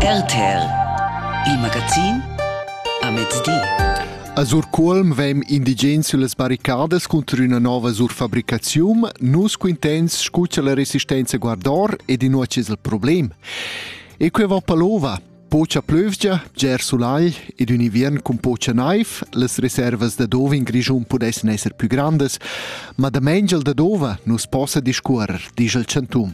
RTL Il magazin a mezdi. A Surcuolm vem indigens süllas barricadas cunter üna nova surfabricaziun. Nus quintens scu cha la resistenza guardor ed inua chi's il problem. E que va palova. Pocha plövgia, ger sulai ed ün inviern cun pocha naiv, las reservas da dove in Grischun pudessan esser pü grandas, ma da mengel da dova nus possa discuorrer, disch il chantum.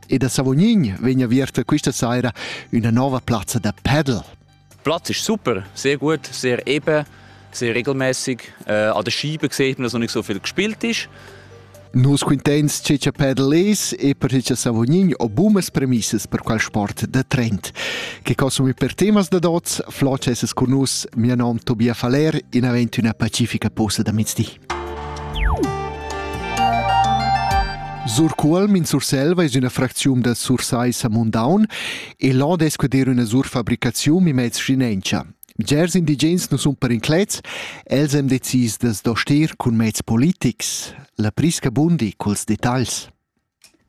E da Savognin vegn aviert questa saira üna nova plazza da paddle. Platz ist super, sehr gut, sehr eben, sehr regelmäßig. Äh, an der Scheibe sieht man, dass noch nicht so viel gespielt ist. Nus cuntents che cha paddle es e per che Savognin ho bumas premissas per quel sport da trend. Che consumi per temas da dots, floc es cun nus, mia nom Tobias Faller, in avent üna pacifica posa da mezdi. Surcuolm in Surselva es üna fracziun da Sursaissa Mundaun e là dess quedir üna surfabricaziun e mez schinentscha. Bgers indigens nu sun perinclets, els hem decis da's doster cun mezs politics. La prisca bundi culs detagls.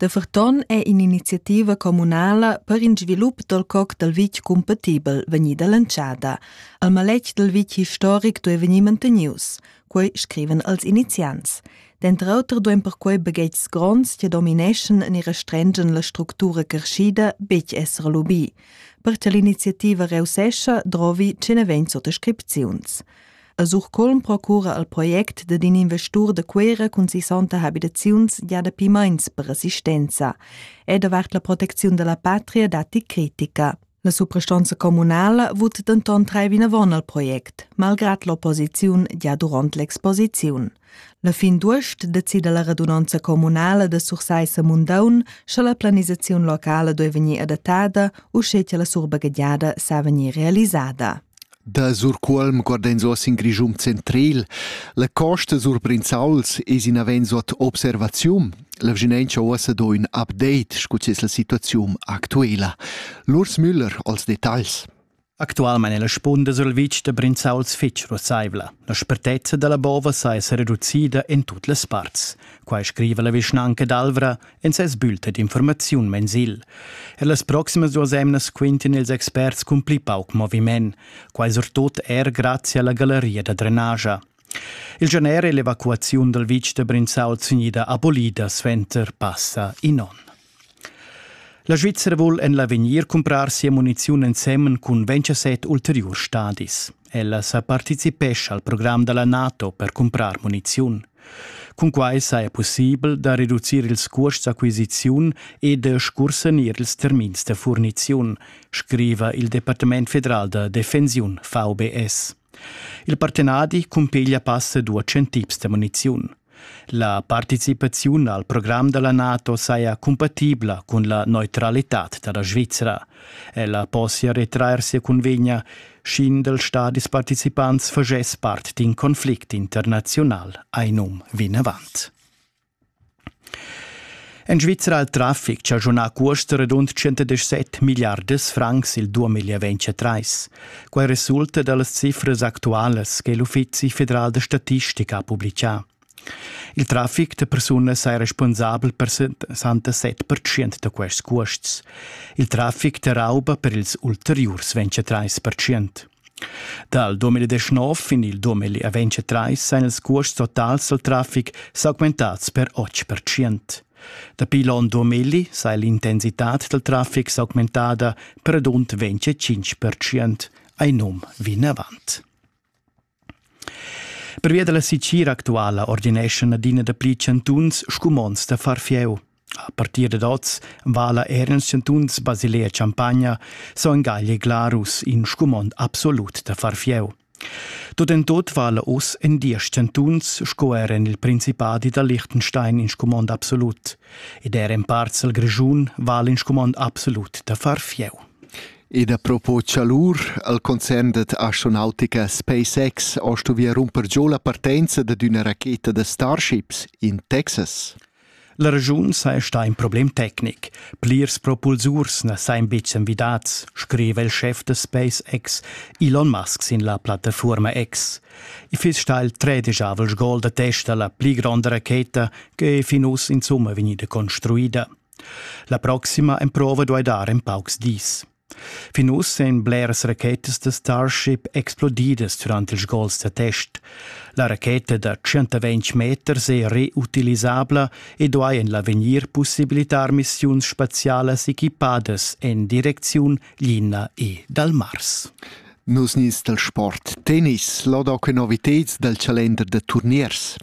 Da ferton è in'iniziativa communala per in svilup dal coc dal vitg cumpatibel vegnida lantschada. Il maletg dal vitg historic duei vegnir mantenius, quei scriven els iniziants. Denter auter duein perquei baghetgs gronds che domineschan ni restrengen la structura crescida betg esser lubì. Per che l'iniziativa reussescha, drovi che ne vegn sottascripziuns. A Surcolm procura al project dad in investur da Cuera cun sissanta habitaziuns gia dapi meins per assistenza. È davart la protecziun dalla patria datti critica. La suprastanza communala vot denton trai vinavon al project, malgrat l'opposiziun gia durant l'exposiziun. La fin d'uost decida la radunanza communala da Sursaissa Mundaun sche la planisaziun locala deve vegnir adattada u sche la surbagadiada sa vegnir realizzada. Da Surcuolm guard'ins oz in Grischun centril. La costa sur Brinzauls es inavens ot observaziun. La vschinentscha uossa do ün update scu es la situaziun actuela. Lurs Müller als detagls. Actualmain è la spunda sul vitg da Brinzauls fitg russaivla. La spertezza da la bova sa es reducida en tut las parts. Quai scriva la vischnanca d'Alvra en ses bulta d'informaziun mensil. E las proximas duas emnas quintin ils experts cun pli pauc moviment, quai surtut er grazie alla galleria da drenagia. Il gener e l'evacuaziun dal vitg da Brinzau gnida abolida suenter passa in onn. La Svizzera vul en l'avegnir cumprar sia muniziun ensemen cun 27 ulteriurs stadis. Ella sa participescha al program da la NATO per cumprar muniziun. Cunquai saja pussibel da reducir ils cuosts d'acquisiziun e da scursanir ils termins da furniziun, scriva il Departament federal da defensiun VBS. Il partenadi cumpiglia passa duas tips da muniziun. La participaziun al program da la NATO saja cumpatibla cun la neutralitad da la Svizra. Ella possia retrair sia cunvegna, sch'in dals stadis participants faschess part d'in conflict internaziunal, ein um vinavant. En Svizra ha il traffic chaschunà cuost radund 117 milliardas francs il 2023. Quai resulta da las cifras actualas che l'Uffizi federal da statistica ha publicà. Il traffic da persunas è responsabel per 67% da quests cuosts. Il traffic da rauba per ils ulteriurs 23%. Dal 2019 fin il 2023 èn ils cuosts totals dal traffic s'augmentads per 8%. Dapi l'onn 2000 sa è l'intensitad dal traffic s'augmentada per rund 25%, ein num vinavant. Pervia dalla sicir actuala ordineschan adina dapli chantuns scumonds da far fieu. A partir dad oz vala er ils chantuns Basilea e Champagna, Son Gagl e Glarus in scumond absolut da far fieu. Tut en tut vala oz en diesch chantuns sco er en il Principadi da Liechtenstein in scumond absolut. Ed er en parts dal Grischun vala in scumond absolut da far fieu. Ed a propos chalur, al concern dad astronautica SpaceX ha stuvì rumper giò la partenza dad üna racheta da Starships in Texas. La regiun saja stà in problem tecnic. Plirs propulsurs na sajan betg envidads, scriva il schef da SpaceX Elon Musk sin la plattafuorma X. I fiss stà il tredijavel sgol da testa la pli gronda racheta che è fin uss insumma vegnida construida. La proxima emprova duai dar en paucs dis. Fin uss èn bleras rachetas da Starship explodidas durant ils gols da test. La racheta da 120 meters è reutilisabla e duai en l'avegnir pussibilitar missiuns spazialas equipadas en direcziun Lina e dal Mars. Nus nies dal sport tennis, loda que novitads dal calender da turniers.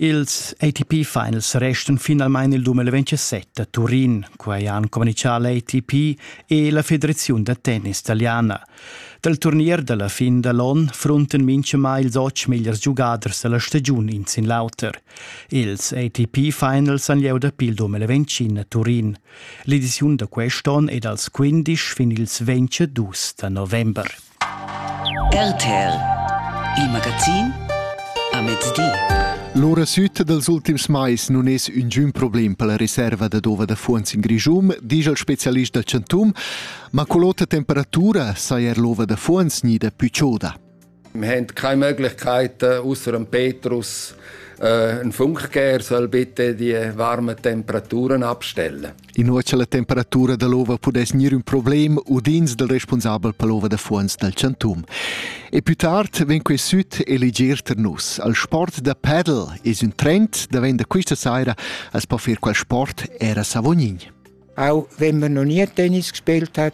Ils ATP Finals restan finalmein il 2027 a Turin, quei han communicau l'ATP e la Federaziun da tennis italiana. Dal turnier dalla fin dall'on frunten mintgamai ils otg megliers giugaders dalla stagiun in sin l'auter. Ils ATP Finals han lieu dapi il 2025 a Turin. L'ediziun da quest'on è dals 15 fin ils 22 da november. RTL Il magazin a mezdi. L'ora sütta dels ultims mais nun es üngün problem per la reserva da dova da fuonz in Grischun, disch il specialist da Chantum, ma cull'ota temperatura saja er l'ova da fuonz gnida pü choda. Wir haben keine Möglichkeit, äh, außer dem Petrus äh, einen Funk geben, er soll bitte die warmen Temperaturen abstellen. Inua cha la temperatura da l'ova pudess gnir ün problem, udins dal responsabel per l'ova da fuonz dal Chantum. E più tard vegn quei süt eleger ter nus. Al sport da padel es ün trend da vender quista saira as po fer qual sport era Savognin. Auch wenn man noch nie Tennis gespielt hat,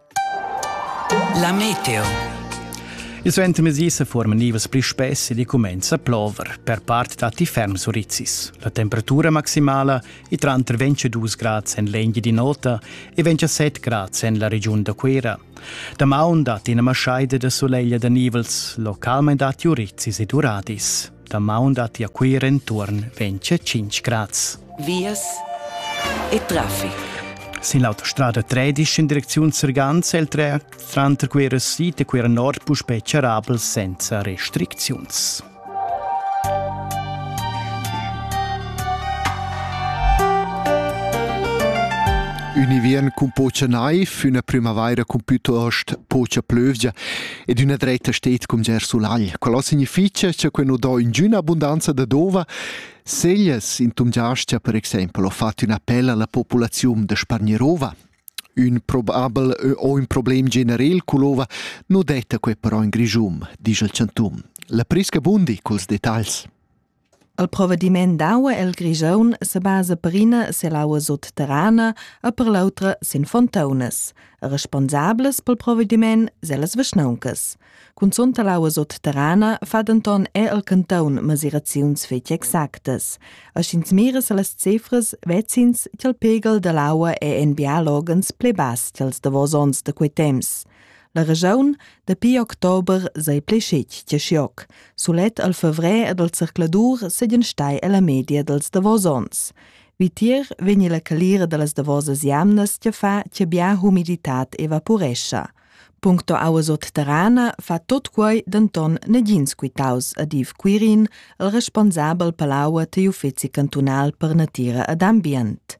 La meteo. Il suenter mesi se forma nivas pli spess ed cumenza plover per part datti ferm surizzis. La temperatura maximala è tranter 22 grad en l'Engi di nota e 27 grad en la regiun da Cuera. Da maun datti ina maschaida da soleglia da nivels, localment datti urizzis e duradis. Damaun datti a Cuira enturn 25 grads. Vias e traffic. Sin l'autostrada 13 in direcziun Serganz el tren tranter Cuira Sid e Cuira Nord puspè charabel senza restricziuns. Ünivien cun pocha naiv, üna prümavaira cun pütost pocha plövgia. ed üna dretta sted cum Ger Sulagl. Qual significha cha quel nu do ingüna abundanza da d'ova? Seglias in Tumgiastia per exaimpel ho fat ün appel alla populaziun da spargnir ova. Ün probabel o ün problem generel cull'ova nu detta quel però in Grischun, disch il chantum. La prisca bundi culs detagls. El provvediment d'aua el Grischun se basa per ina selaua sutterrana e per l'autra sin fontaunas, responsables pel provvediment sellas vischnauncas. Cunzunt l'aua sutterrana fa denton er el canton mesiraziuns fetg exactas. A sch'ins mira se las cifras, vecins ch'el pegel dall'aua è en bialogens pli bass ch'els davos ons da quei temps. La regiun dapi october sei pli scetg che schioc. Sulet al fevrer ed al zercladur seigien stai ella media dels davos ons. Vitier vegni la calira dallas davosas jamnas che fa che bia humiditad evaporescha. Puncto aua sotterrana fa tot quei denton negins quitaus ad Iv Quirin, il responsabel palaua tegl uffeci cantunal per natira ed ambient.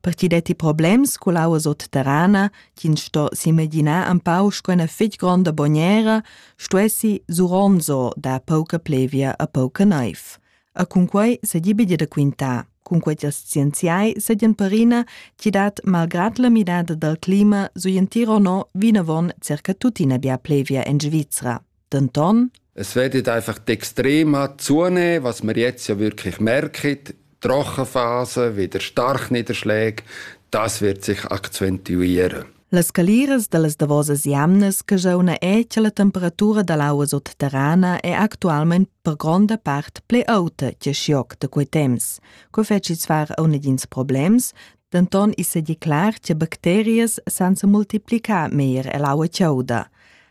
per chi detti problems cull aua sotterrana, chi'ns sto s'imaginar empau sco üna fich gronda bognera, stuessi Suronzo dar pauca plevia a pauca naiv. E cun quei s'hagi bidi da quintar. Cun quei ch'ils scienziai sajan perina chi dat malgrad la midada dal clima su in Tirol no vinavon circa tuttina bia plevia en Svizra. Denton es werdet einfach die extrema Zune, was wir jetzt ja wirklich merken, die Rochenphase, wieder Starkniederschläge, das wird sich akzentuieren. Las caliras da las davosas jamnas che jeu na è che la temperatura da l'aua sotterrana è actualment per gronda part ple auta che schioc da quei temps. Co feci far a dins problems, denton is è declar che bacterias sansa multiplicar meir e l'aua chauda.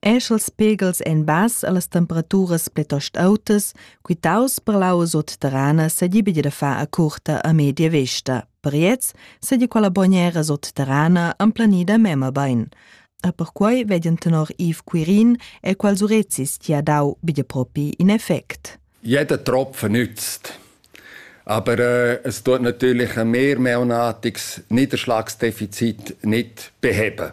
Eschels pegels ein bass allas temperaturas plitost autas, quitaus per l'aua sutterrana sedibidi da far a curta a media vesta. Per gliez sedi quella bognera sutterrana emplanida mema bein. A perquei vegien tenor Yves Quirin e quals urezis ti ha dau bia propi in effect. Jeder Tropfen nützt. Aber äh, es tut natürlich ein mehrmonatiges Niederschlagsdefizit nicht beheben.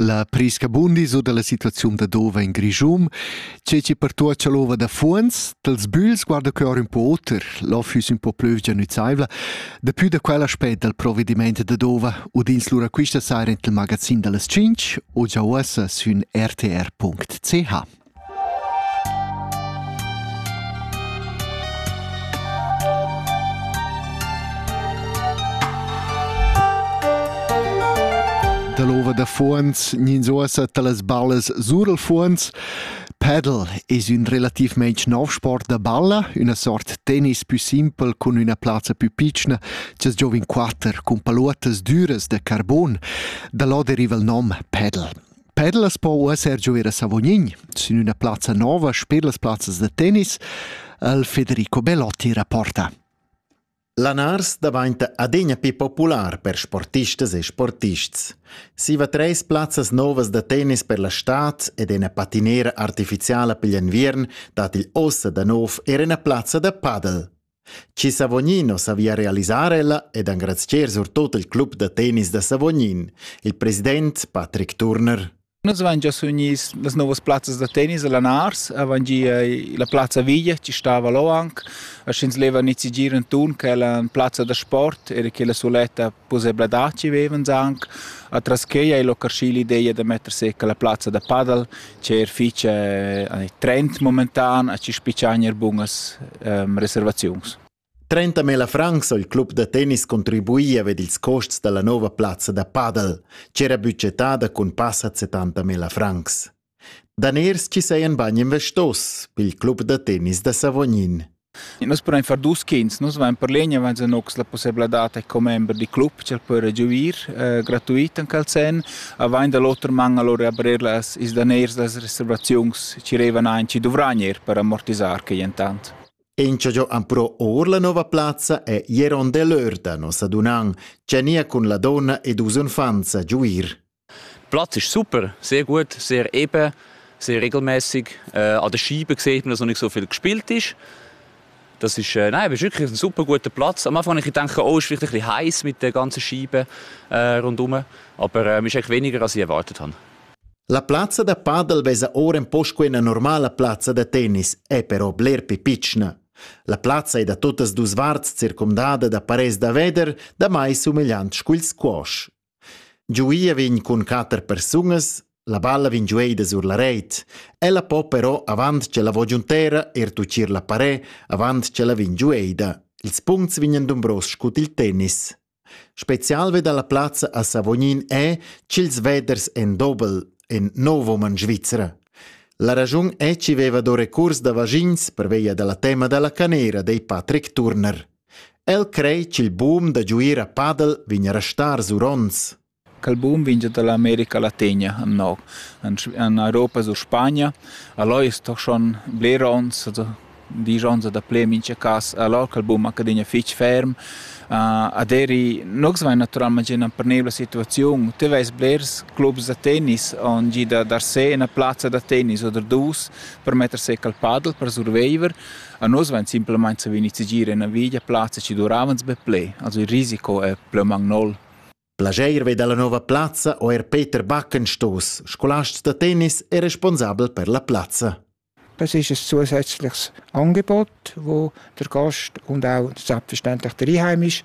La prescabundis u dalla situaziun da Dova in Grischun, tgei che pertuocha l'ova da fuonz, dals bügls guarda que or ün po oter, l'ov füss ün po plüvgia nüzaivla, dapü da quell aspet dal provvediment da Dova udins lura quista saira int il magazin da las 5 o già uossa sün rtr.ch. Dall'ova da fuons nins uossa talas ballas sur il fuons. Padel es ün relativmaing nov sport da balla, üna sort tennis pü simpel cun üna plazza pü pitschna, ch'as giovin quatter cun paluottas düras da carbon. Da là deriva il nom padel. Pedlas po uesser giu era Savognin sin üna plazza nova sper las plazzas da tennis, al Federico Belotti rapporta. Lanars davainta adegna più popular per sportistas e sportists. Siva treis plazzas novas da tennis per la stad ed ena patinera artificiala pigl enviern dat il ossa da nov er ena plazza da padel. Chi Savognino savia realisar ella ed engrazcher surtot il club da tennis da Savognin, il president Patrick Turner. Nus avain gia sugnis las novas plazzas da tennis a Lanars, avain gia la plazza Viglia, ci stava là anche, e sch'ins leva nizzi gir intorno, che è la plazza da sport e che è la suletta Pussebladad chi vevans aunc atras quei ei l'occarschi l'ideia da metter secca la plazza da padel, che er fich trend momentan a ci spichagn er bunas reservaziuns. 30.000 francs ho il club da tennis contribuì ad ils costs da la nova plazza da padel, ch'era bütgetada cun passa 70.000 francs. Daners chi sajan bain investos pel club da tennis da Savognin. Nus pudain far dus quints. Nus vain per l'egna vains anox la pussebladad da commember di club ch'el po regiuir eh, gratuit en quel sen. Avain da l'oter man allora abrir las is daners las reservaziuns chi revan ein chi dovragn er per amortisar que intant. Enciagiò am pro or la nova plazza è Jeron Delörda nos adunan, cia nia cun la donna ed us unfanza giuir. Platz ist super, sehr gut, sehr eben, sehr regelmäßig. Äh, an den Scheiben sieht man, dass noch nicht so viel gespielt ist. Das ist, äh, nein, ist wirklich ein super guter Platz. Am Anfang habe ich gedacht, oh, ist vielleicht ein bisschen heiß mit den ganzen Scheiben äh, rundherum. Aber äh, ist echt weniger, als ich erwartet habe. La piazza da padel vesa ora un po' quella normala piazza da tennis, è però bler più piccina. La piazza è da tutas dus varts circumdada da pares da veder, da mai somigliant scuil squash. Giuia vegn cun quater persunas, la balla vegn giueida sur la reit. Ella po però, avant ch'ella va giuntera, er tuccir la parè, avant ch'ella vegn giueida. Ils puncts vegnan dumbros scut il tennis. Spezial ve dalla plazza a Savognin è ch'ils veders en dobel en Novoman Svizra. La ragiun è chi veva do recurs da vagins per veia dalla tema dalla canera dei Patrick Turner. El crei ch'il bum da giuir a padel vegn a restar sur onns. Quel bum vegn dall'America Latina annò. En Europa sur Spagna. Allò es toch schon bler ons, also disch ons da ple mincha cas. Allò quel bum accadegna fich ferm. Uh, aderi nux vai naturalmente in una pernevole situazione tu vai blers clubs da tennis on gi da dar se una plazza da tennis oder dus per mettersi al paddle per survivor A nus vain simplamaing savü nizzegier üna via plazza chi duravans be ple, also il risico è plü magnol. Plageir vei dalla nova plazza o er Peter Backenstos, scolast da tennis e responsabel per la plazza. Das ist ein zusätzliches Angebot, wo der Gast und auch selbstverständlich der Einheim ist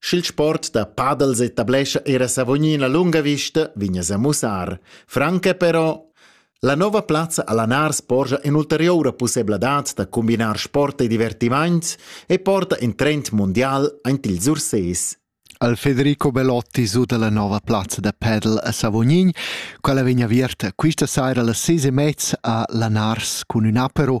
Sch'il sport da padels etablescha era Savognin a lunga vista, vegna a mussar. Franca però la nova plazza a Lanars porgia in'ulteriura pussebladad da combinar sport e divertiments e porta in trend mundial ant ils Urses. Al Federico Belotti su dalla nova plazza da padel a Savognin, quella vegna aviarta questa saira las ses e mezza a Lanars cun un apero